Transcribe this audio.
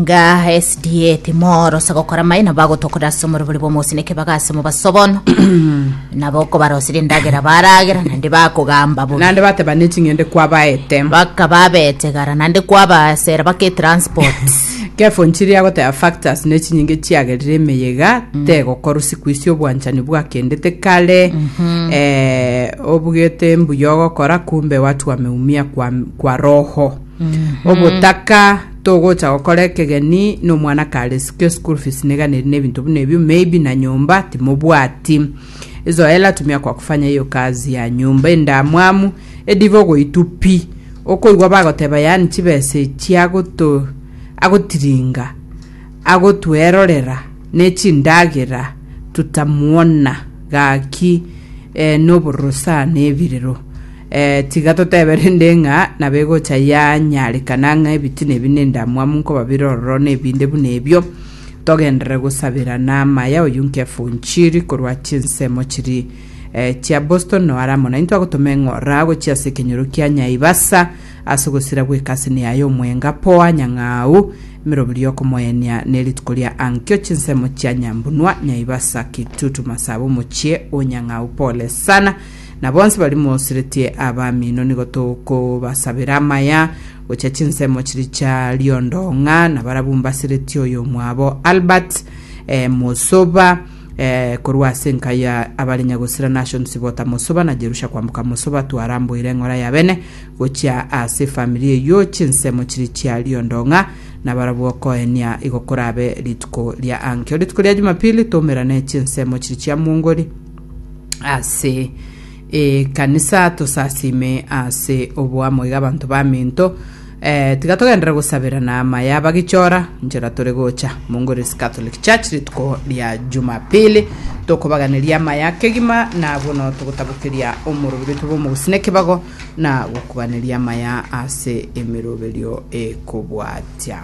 Nga SDA timorose gokora maye na bagotokorera ase omorobori bw'omosini ekebaga ase omobaso bono nabo okobarosera endagera baragera naende bakogamba bobe Naende bateba neching'ende kwabaete. bakaba abetegara naende kwabasera bake transport Kefo nchiri agoteba factors nechinyinge chiagerire emeyega tegokorwa sikuisi obwanchani bwakendete kare eh, obugete mbuya ogokora kumbe watu wameumia kwa, kwa roho obotaka Togocha gokora ekegeni nomwana kare sikio school fees niga neri nebinto buna ebio maybe na nyomba timobwati zoela tumia kwa kufanya hiyo kazi ya nyomba endamwamu ediva ogoitu pi okoigwa bagoteba yani chibesa echi agoto agotiringa agotwerorera nechindagera tutamuona gaki eh, nobororo sana ebirero Tiga totebe rende ng'a nabegocha yanyarekana ng'a ebitina ebi nendamwamu nkoba bire ororo nebinde buna ebio. Togenderere gosabera na amaya oyio nkefa onchiri korwa chinsemo chiri eh, chia Boston no aramo naintwe agotoma eng'ora gochia ase ekenyoro kia Nyaibasa ase ogosira gw'ekasini yaye omwenga poa nyang'au emerobiri y'okomoyania ne rituko ria ankio chinsemo chia Nyambunua Nyaibasa Kitutu Masaba omochie o Nyang'au pole sana Na bonsi baria moseretie abamino nigo tokobasabera amaya gochia chinsemo chiria chia riondo ng'a nabarabwo mbaseretie oyomwabo Albert eh, Mosoba eh, korwa ase enka ya abare Nyagosira Nation Sibota Mosoba na Jerusha kwamboka Mosoba twaramboire eng'ora ya bene gochia ase efamiri eyio chinsemo chiria chia riondo ng'a nabarabwo okoenia igo korabe rituko ria ankio rituko ria Jumapili toumerane chinsemo chiria chia mwongori ase ekanisa tosasime ase oboamo iga abanto bamento eh, tiga togenderere gosaberana amaye abagichora nchera tore gocha mongoresi catholic church rituko ria jumapili tokobaganeria amaye akegima na bono togotabokeria omorobiri oito bw'omogusina ekebago na gokubaneria amaya ase emeroberio ekobwatia